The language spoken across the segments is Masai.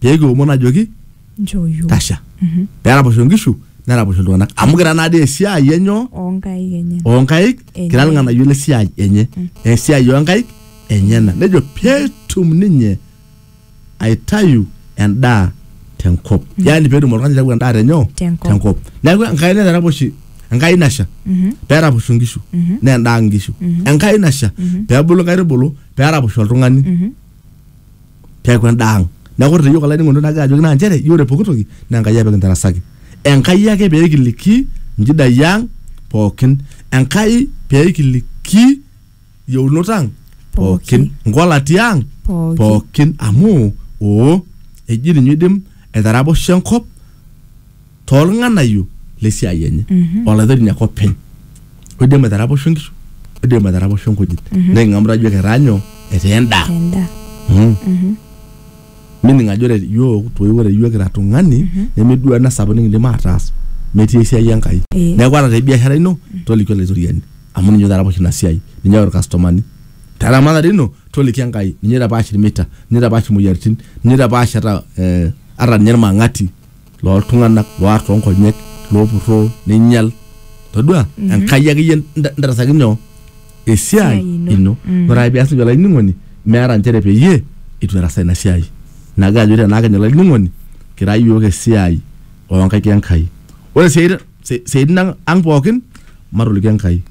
pee kiomon ajoki Nchoo yiok. tasha Mhm. pee eraposho nkishu neraposho iltung'anak amu kira naa dii esiai enyoo Oonkaik enye. oonkaik Enye. kira ilng'anayio le siai enye esiai oonkaik enyena nejo peetum ninye aitayu endaa tenkop yaani peetum oltung'ani aitayu endaa tenyoo Tenkop. neeku enkai naitaraposhi enkai nasha Mhm. peeraposho nkishu Mhm. naa endaa nkishu enkai nasha peebulu nkaitubulu peeraposho oltung'ani Mhm. peeku endaa ang neeku ore teyiok olainining'oni lai nagira ajoki naa nchere iyiok ore pooki toki naa Enkai ake pekintarasaki Enkai ake peekiliki inchidai ang pookin Enkai peekiliki iyieunot ang pookin inkolati ang Pookin. pookin amu oo eji ninye oidim aitaraposho enkop toolng'anayio le siai enye olaitotoni ake openy oidim aitaraposho nkishu oidim aitaraposho nkujit niking'amu tajo ketaa nyoo etaa endaa endaa Mm. mining ajo ore yiok toi ore yiok kira tung'ani nemeduo ena sapuk nikindim ataas metii esiai enkai Eh. neeku ata te biashara ino toliki olaitoriani amu ninye oitaraposho ina siai ninye oyau irkastomani te ramatare ino toliki enkai ninye oitapaash irmita ninye oitapaash imoyiaritin ninye oitapaash ata eh, ata ninye irmang'ati looltung'anak loar toonkonyek loopurroo neinyal todua enkai akeyie nta- ntarasaki nyoo esiai Esiai ino. ino Mm. ore ake pias nejia olainining'oni meeta nchere peyie itu erasa ina siai nagira ajo tenaa kenye olainining'oni kira iyiook esiai oonkaik enkai ore siatin si- siatin ang ang pookin matoliki enkai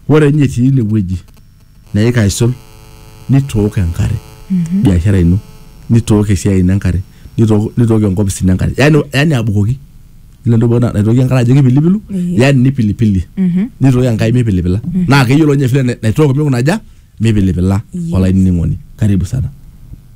ore ninye etii ine wueji neika aisul nitook enkare biashara ino nitook esiai ino enkare nitook nitook enkopis ino enkare yani yani abukoki ile ntoki pookin naitoki enkare ajo kipilipilu Ehe. yani nipilipilie Mhm. nitoki enkai mipilipila naa keyiolo ninye vile na- naitook mikuna aja mipilipila Yes. olainining'oni karibu sana